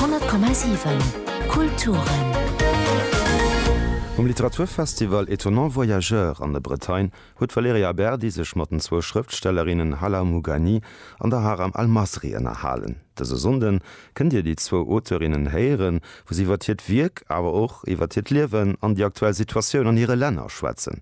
100,7 Kulturen. Um Literaturfestival Étonnants voyageurs an der Bretagne huet d'Valerija Aberdi sech mat den zwou Schrëftstellerinnen Hala Mugani an der Haram Almasri ënnerhalen. Dëse Sonnden kënnt Dir déi zwou Auteurinnen héieren, wou si iwwer hiert Wierk, awer och iwwer hiert Liewen an déi aktuell Situatioun an hire Länner schwätzen.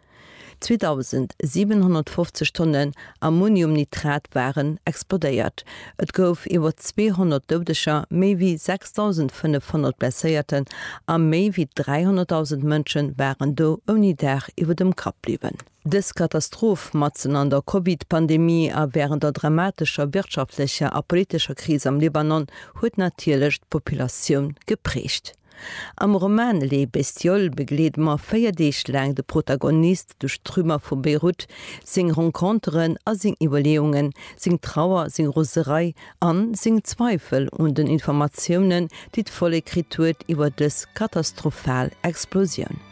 2.750 Tonnen Ammoniumnitrat waren explodéiert. Et gouf iwwer 200 Doudeger, méi wéi 6.500 Blesséierten a méi wéi 300.000 Mënsche waren do ouni Daach iwwer dem Kapp bliwwen. Dës Katastroph, matzen an der Covid-Pandemie a wärend der dramatescher wirtschaftlecher a politescher Kris am Libanon, huet natierlech d'Populatioun geprägt. Am Roman Les bestioles begleede mer véier Deeg laang de Protagonist duerch d'Trümmer vu Beirut, seng Renconteren a seng Iwwerleeungen, seng Trauer, seng Roserei an seng Zweifel un den Informatiounen, déi d'Vollek kritt huet iwwer dës katastrophal Explosioun.